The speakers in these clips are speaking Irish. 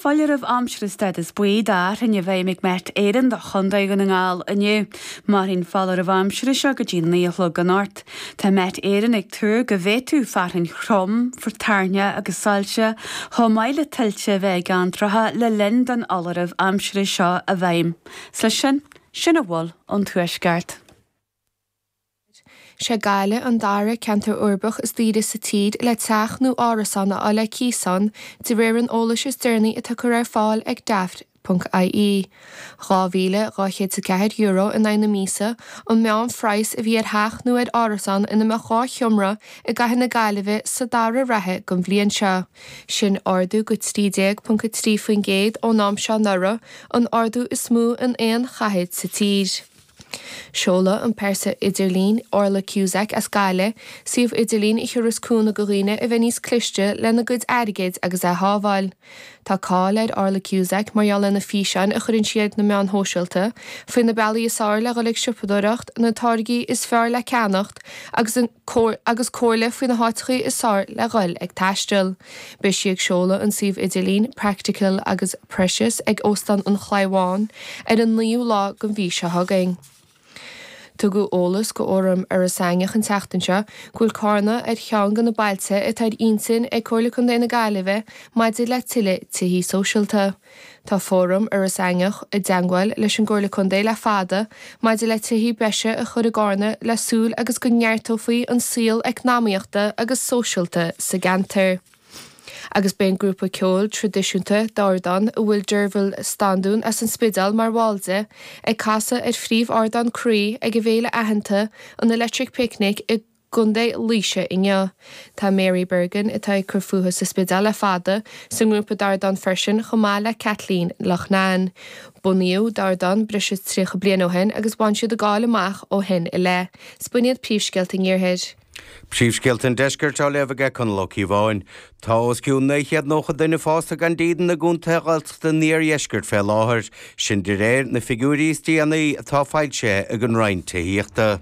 Foláireamh aimsire stádas buí do thoirní i bhfeidhm ag Met Éireann do Chontae Dhún na nGall inniu. Mairfidh an foláireamh aimsire seo go dtí naoi a chlog anocht. Tá Met Éireann ag tuar go bhféadfadh fearthainn throm, toirneach agus soilse, chomh maith le tuilte a bheith i gceantracha le linn don fholáireamh aimsire seo i bhfeidhm. Is leis sin, sin a bhfuil ón Tuaisceart. Is é Gaillimh an dara ceantar uirbeach is daoire sa tír le teach nó árasán a fháil ar cíos ann, de réir an eolais is deireanaí atá curtha ar fáil ag Daft. ie. €2,204 in aghaidh na míosa an meánphraghas a bhí ar theach nó ar árasán ina mbeadh dhá sheomra i gcathair na Gaillimhe sa dara ráithe gon bhliain seo. Sin ardú go 13.3% ón am seo anuraidh, an t-ardú is mó in aon chathair sa tír. Seolfaidh an phearsa idirlín Orla Cusack as Gaillimh, suíomh idirlín a thabharfas cúnamh go dhaoine a bheith níos cliste lena gcuid airgid agus é a shábháil. Tá cáil ar Orla Cusack mar gheall ar na físeáin a chuireann sí ar na meáin shóisialta faoi na bealaí is fearr le dhul ag siopadóireacht, na táirgí is fearr le ceannacht agus an agus comhairle faoi na háiteachaí is fearr le dhul ag taisteal. Beidh sí ag seoladh an suíomh idirlín 'Practical agus Precious' ag Óstán an Chliabháin ar an 9ú lá gon mhí seo chugainn. Tugadh eolas go fhóram Iorras Aithneach an tseachtain seo go bhfuil Cárna ar cheann de na bailte atá ar intinn ag Comhairle Contae na Gaillimhe maidir le tuilleadh tithí sóisialta. Tá Fóram Iorras Aithneach i dteangmháil leis an gComhairle Contae le fada maidir le tithí breise a chur i gCárna le súil agus go neartófaí an saol eacnamaíochta agus sóisialta sa gceantar. Agus beidh an grúpa ceoil tradisiúnta, Dordán, a bhfuil Deirbhile Standún as an Spideál mar bhall de, ag casadh ar phríomhardán Croí ag an bhféile aitheanta, an Electric Picnic i. gContae Laoise inniu. Tá Mary Bergin, atá ag cur fúthu sa Spidéal le fada, sa ngrúpa Dordán freisin, chomh maith le Kathleen Loughnane. Bunaíodh Dordán breis is tríocha bliain ó shin agus bhain siad an-cháil amach ó shin i leith. Is b'in iad Príomhscéalta an Iarthair. Príomhscéalta an Deiscirt á léamh ag Conall Ó Cíobháin. Tá os cionn naoi chéad nócha duine fásta gan dídean i gcontaetha Ghaeltachta an iardheiscirt fé láthair, sin de réir na figiúirí is déanaí atá foilsithe ag an Roinn Tithíochta.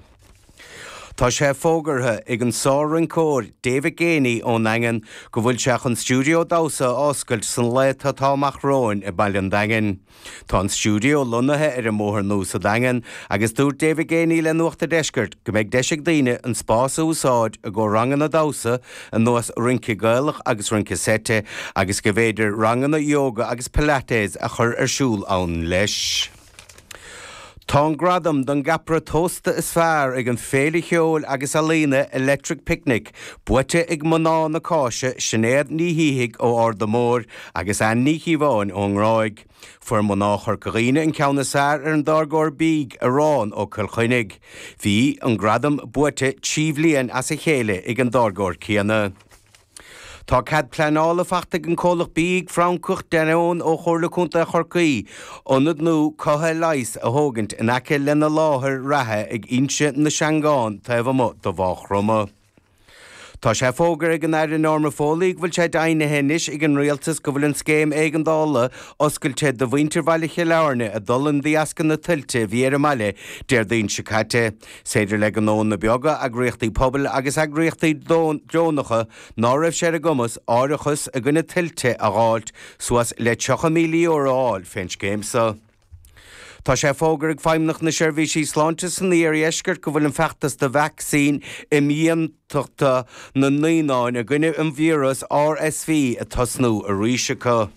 Tá sé fógartha ag an sár-rinceoir David Geaney ón Daingean go bhfuil sé chun stiúideo damhsa a oscailt sna laethanta atá amach romhainn i Baile an Daingin. Tá an stiúideo lonnaithe ar an mBóthar Nua sa Daingean agus dúirt David Geaney le Nuacht a' Deiscirt go mbeidh deis ag daoine an spás a úsáid i gcomhair ranganna damhsa ar nós rince Gaelach agus rince seite agus go mb'fhéidir ranganna yoga agus pilates a chur ar siúl ann leis. Tá an gradam don gceapaire tósta is fearr ag an bhféile cheoil agus ealaíon Electric Picnic buaite ag mná na cáise Sinéad Ní Shíthigh ó Arda Mór agus Ann Ní Chíobháin ón nGráig. Fuair mná Chorca Dhuibhne an ceann is fearr ar an dtáirgeoir bídh Arán ó Chill Chainnigh. Bhí an gradam buaite trí bliana as a chéile ag an dtáirgeoir céanna. Tá cead pleanála faighte ag an gcomhlacht bídh Francach Danone ó Chomhairle Contae Chorcaí ionad nua cothaithe leighis a thógaint in aice lena láthair reatha ag Inse na Seangán taobh amuigh de Mhaigh Chromtha. Tá sé fógartha ag an Aire Norma Foley go bhfuil sé deimhnithe anois ag an Rialtas go bhfuil an Scéim Éigeandála oscailte do mhuintir Bhaile Chill Airne a d'fhulaing de dheasca na tuilte a bhí ar an mbaile Déardaoin seo caite. 'S féidir le gnónna beaga eagraíochtaí pobail agus eagraíochtaí deonacha ná raibh sé ar a gcumas árachas i gcoinne tuilte a dh'fháilt suas le €30,000 a fháil fén scéim so. Tá sé fógartha ag Feidhmeannacht na Seirbhíse Sláinte san Iardheisceart go bhfuil an feachtas do vacsaín imdhíontachta na naíonán i gcoinne an víreas RSV ag tosnú arís acu.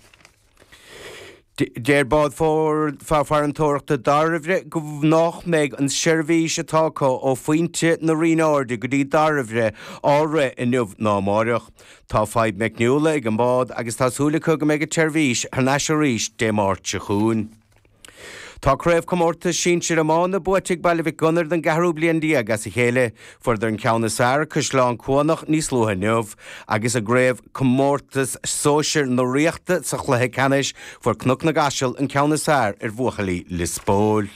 Deir Bád Farantóireachta Dairbhre nach mbeidh an tseirbhís atá acu ó Phointe na Rinne Airde go dtí Dairbhre á rith inniu ná amáireach. Tá fadhb meicniúla ag an bád agus tá súil acu go mbeidh an tseirbhís thar n-ais arís Dé Máirt seo chugainn. Tá Craobhchomórtas Sinsir Iomána buaite ag Baile Mhic Gonair don gceathrú bliain déag as a chéile. Fuaireadar an ceann is fearr ar Chaisleán Cuanach níos luaithe inniu, agus i gCraobhchomórtas Sóisir na Ríochta sa chluiche ceannais fuair Cnoc na gCaiseal an ceann is fearr ar bhuachaillí Lios Póil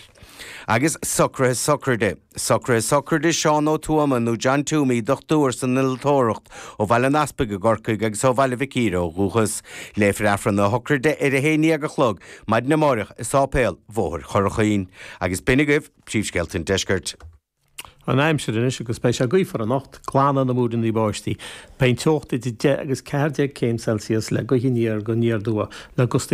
agus socruithe sochraide. Socruithe sochraide Seán Ó Tuama nó John Twomey, dochtúir san innealtóireacht ó Bhaile an Easpaig i gCorcaigh agus ó Bhaile Mhic Íre ó dhúchas. Léifear Aifreann na sochraide ar a haon déag a chlog maidin amáireach i Sáipéal Bhóthar an Churraichín. Agus b'in agaibh príomhscéalta an deiscirt. An aimsir anois agus beidh sé gaofar anocht, glanfaidh na múiríní báistí. Beidh an teocht idir deich agus ceathair déag céim Celsius le gaoth aniar go haniar aduaidh le gustaí